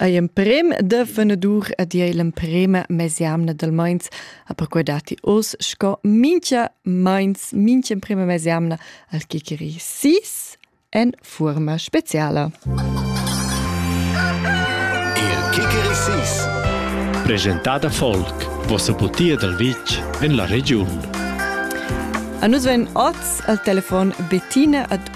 Ei emprem da fenadur ed ei l'emprema mesjamna dal meins, ha perquei datti oz sco mincha meins, mincha emprema mesjamna al chicheri sis en fuorma speciala. Il chicheri sis presentada Volk, vossa butia dal vitg en la regiun. A nus vegn oz al telefon Bettina ad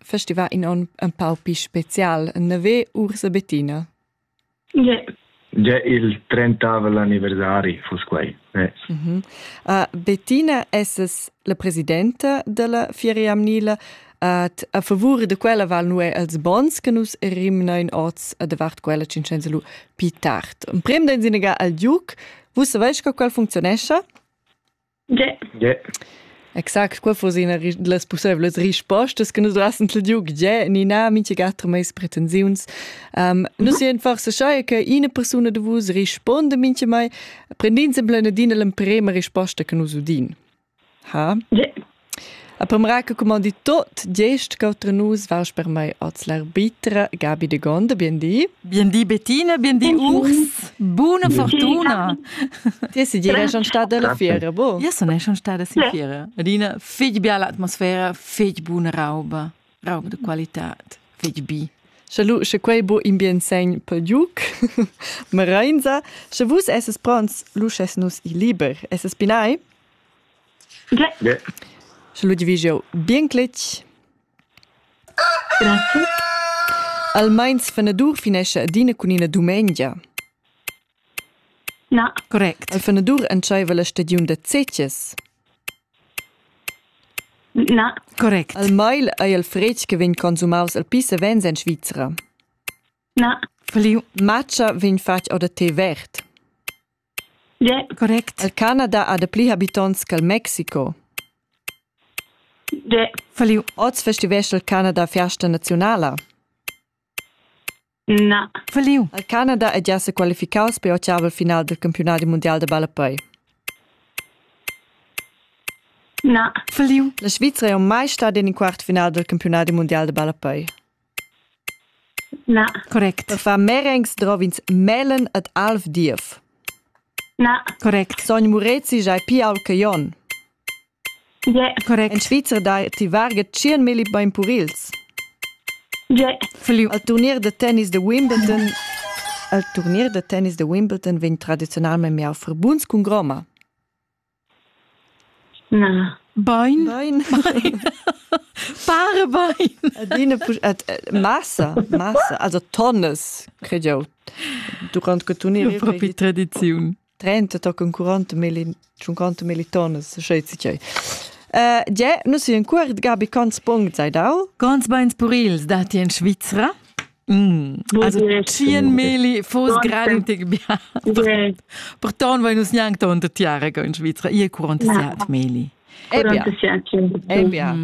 festivà in on un pau pi spezial navè Ursa Bettina? Yeah. Già il 30 l'anniversari foss quai. Eh. Mm -hmm. uh, Bettina es la presidenta della Fieria Amnila. Uh, a favore de quella val nu è els bons che nus rimna in oz a davart quella cincenza lu pi tard. Un prem den sinega al Duc, vus savais co quel funzionescha? Ge. Exact qua fus ina las pussevlas rispostas che nus duassen til giu ge ni na minchegata meis pretensiuns. Um, nus sien forse schai che ina persuna de vus risponde minche mai prendin semble adina l'emprema risposta che nus udin. Ha? Ge. A premra che cumandi tot gest che nus vas per mei als l'arbitra Gabi de Gonda, bien di. Bien di Bettina, bien di Urs. Buona fortuna. Ti si dire schon stata alla fiera, bo? Io sono schon stata in fiera. Rina, fig biala atmosfera, fig buona rauba, rauba de qualità, fig bi. Schalu, sche quei bo in bien segn per giuc, Merainza, sche vus esses pronts, lusches nus i liber. Esses pinai? Sche lu vi jeu bien cletg. Grazie. Al meins fenadur finescha adina cun ina dumengia. Na. Correct. Al fenadur entscheiva la stagiun da cetgs. Na. Correct. Al meil ei el fretg che vegn consumaus el pli savens en Svizra. Na. Fliu. Matscha vegn fatg or da tè verd. Correct. El Canada ha dapli habitonts ch'el Mexico. Falliu. Oz festivescha il Canada festa naziunala. Na. Falliu. El Canada è già sequalificaus per ottavel final del campionat mundial de ballapei. Na. Falliu. La Svizzera è mai stata in quart final del campionat mundial de ballapei. Na. Correct. Fa Merengs drov'ins melen ed alv diev. Na. Correct. Sogn Murezi giai pial che Jon. Ie. Correct. En Svizra dai ti varga tschien milli bain purils. Ie. Feliu. Al turnier da tennis de Wimbledon al turnier da tennis de Wimbledon vegn tradizionalmente miau verbuns cun groma. Na. Bain. Bain. Fare bain. Adina massa, massa, also tonnes, cred eu, durant che tu ne eri propi tradiziun. 30 toccano 40 milli 50 milli tonnes, schetsi tgei. Uh, Ge, nus in cuort Gabi, cons punct sei dau? Cons beins purils datti in Svizra? Mm, also tschien meli fos grantig bia. Porton vai nus gnanc tonta tiara ga in Svizra, ia 47 meli. Eh bia.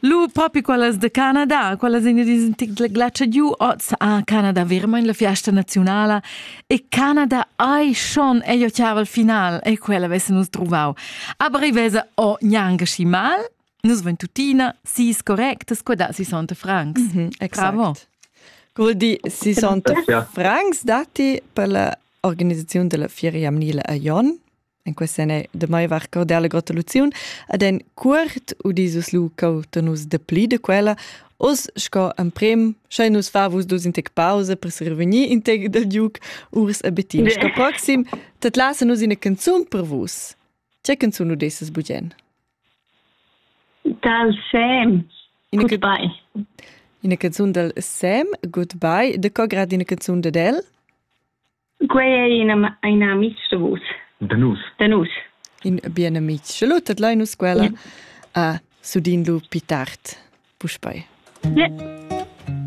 Lu propi quellas de Canada, quellas in dis tic glaccia giu oz a Canada verma in la fiesta nazionala e Canada ai schon e io chiaval final e quella vesse nus trovau. Aber i vese o gnanca schi mal Nus vein tuttina sis correctas quadas 60 francs. Mm -hmm, exact. Bravo. Col di 60 francs datti per la organisazione della Fiera Jamnile a Jon. En questa è de mai var cordella gratulazione ad en cuort u dieses lu cauta nus de pli de quella os sco en prim sche nus fa vus dus in tec pausa per survenir in tec del duc urs abetin sco proxim tat lasa nus ina canzun per vus che canzun udesses bugen Dal sem. Goodbye. Ina canzun dal Sem, Goodbye. De co grad ina canzun dad el? Quei ei ina, ina amic da vus. Da nus. Da nus. In bien amic. Lu tadlai nus quella yeah. a Sudin lu pi tard. Puspei. Yeah.